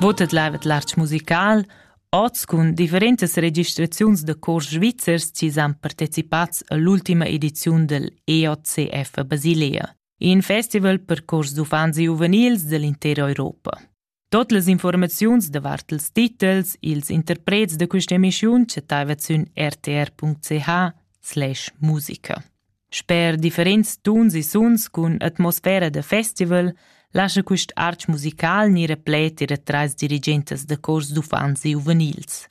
Votet lavet l'artg musical oz cun differentas registraziuns da cors svizzers chi s'han partecipats all'ultima ediziun del EOCF a Basilea, in festival per cors d'uffants e giuvenils dell'intera Europa. Tot las informaziuns davart ils titels, ils interprets da questa emischiun chattaivat sün rtr.ch slash musica. Sper differents tuns e suns cun atmosfera da festival lascha quist arch musical gnir replet era trais dirigentas da cors d'uffants e giuvenils.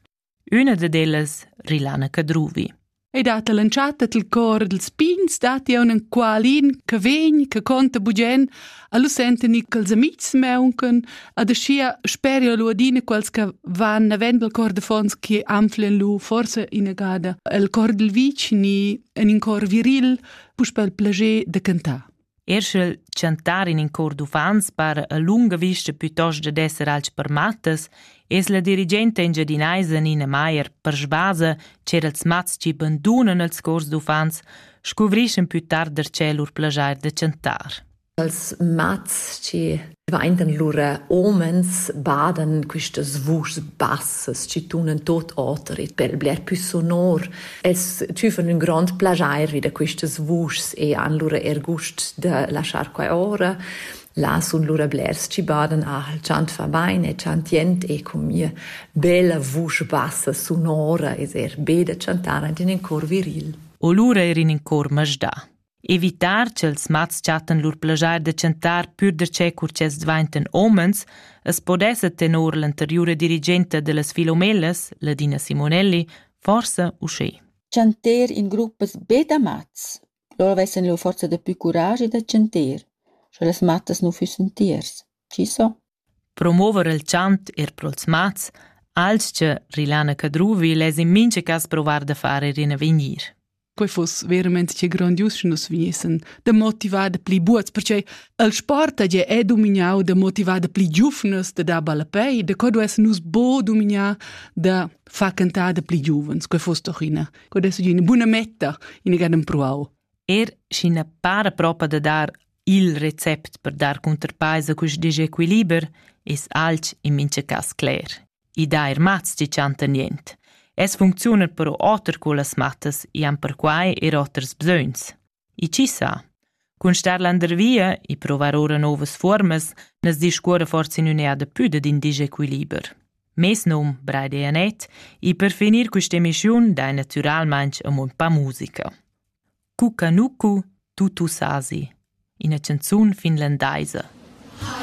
Üna dad ellas, Rilana Cadruvi. E dat l'entschatta dal cor dals pigns datti aunc enqualin che vegn, che conta bugen, Allo senten i quels amics meuncan, ad aschia speria lu adina quels che van navend al cor de fons che anflen lu forse inagada el cor del vicini en in cor viril puspel plager de cantar. Erschel chantar in in cor d'uffants par a lunga vista piuttost da d'esser alch per mattas Es la dirigenta engiadinaisa Nina Maier per sbasa ch'er els mats chi bandunan els cors d'uffants scuvrischan plü tard darcheu lur plaschair da chantar. Els mats chi dvaintan lura homens badan quistas vuschs bassas chi tunan tot oter e per bler più sonor. Els tüfan ün grond plagiair vi da quistas vuschs e han lura er gust da laschar quai ora. Là sun lura blers chi badan aha'l chantfà bain e chantiend e cun mia bella vusch bassa sonora es eir be da chantar aint in ün cor viril. O lura eir in ün cor masdà. Evitar ch'els mats chattan lur plajair da chantar pür darcheu cur ch'els dvaintan homens, as podessa tenor l'anteriura dirigenta da las Filomellas, Ladina Simonelli, forsa uschè. Chanter in gruppas be da mats Lura vessan lur forza daplü curaschi da tschanter, sche las mattas nu füssan tiers. Chi so? Promover il chant eir pro'ls mats, alch Rilana Cadruvi less in mincha cas provar da far eir in avegnir. Quei fuss verament che grandius sche nus vegnissan da motivar da pli buots, perché il sport è è domignau da motivar da pli giuvnas da dar ballapei, da co duess nus bo domignar da far cantar da pli giuvens. Quei fuss doch ina Quod es üna buna metta in gan empruau. Er schi na para propa da dar il recept per dar cunterpaisa cust disequiliber, es alch in mincha cas cler. I dà er mats chi chantan nient. Es funcziuna però oter co las mattas, i han perquai er oters bsögns. E chi sa? Cun star landervia e provar ora novas fuormas nas discuora forsa in üneada pü dad in disequiliber. Mes num Breide Anet e per finir quist'emissiun dai natüralmaing amo ün pa musica. Cucanucu tutu sasi, ina canzun finlandaisa. Hi.